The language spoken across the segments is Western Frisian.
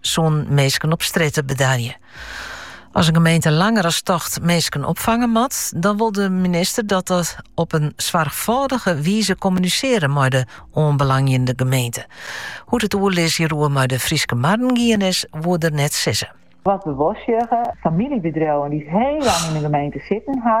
sûn minsken op strjitte bedarje. As in gemeente langer as tocht minsken opfange moat, dan wol de minister dat op in soarchfâldige wize kommuniseren mei de oanbelangjende gemeente. Hoe't it oerlis hieroer mei de Fryske Marren gien is, woe er net sizze. Wat we wol sjogge, famyljebedriuwen dy't hiel lang yn de gemeente sitten ha,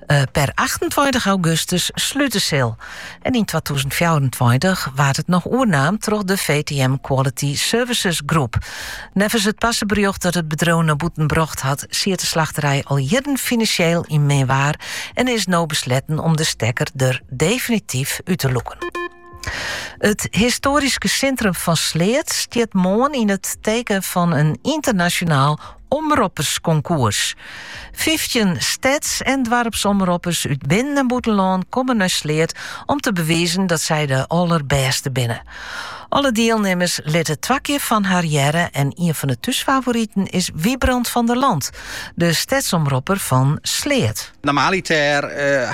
Eh, per 28 augustus slute sil. En yn 2024 waard it noch oernaam troch de VTM Quality Services Group. Neffens it parseberjocht dat it bedriuw nei bûten brocht hat, siet de slachterij al jierren finansjeel yn min waar en is no besletten om de stekker der definityf út te lûken. It histoaryske sintrum fan Sleat stiet moarn yn it teken fan in ynternasjonaal omropperskonkoers. Fyftjin steds- en doarpsomroppers út binnen- en bûtenlân komme nei Sleat om te bewizen dat sy de allerbêste binne. Alle dielnimmers litte twa kear fan har hearre en ien fan de thúsfavoriten is Wybrand van der Land, de stedsomropper fan Sleat. Normaliter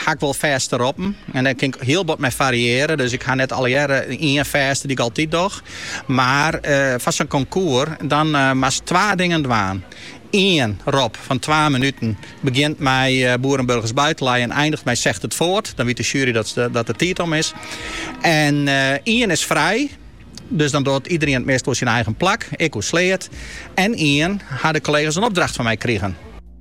ha ik wol fêste roppen en dêr kin ik hiel bot mei fariearje. Dus ik ha net allegearre ien fêste dy't ik altyd doch. Mar foar sa'n konkoer dan moatst twa dingen dwaan. Ien rop fan twa minuten begjint mei boeren, burgers, buitenlui en eindigt mei zegt het voort. Dan wyt de sjuery dat de tiid om is. En ien is frij, dus dan docht iedereen it meast oer syn eigen plak, ik oer Sleat. En ien ha de kollega's in opdracht fan my krigen.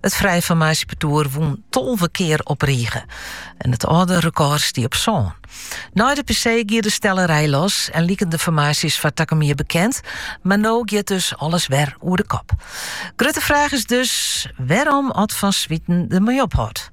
It frije formaasjepartoer wûn tolve kear op rige en it âlde rekôr stie op sân. Nei de PC gie de stellerij los en liken de formaasjes foar takom jier bekend, mar no giet dus alles wer oer de kop. Grutte fraach is dus wêrom at Van Zwieten dermei ophâldt.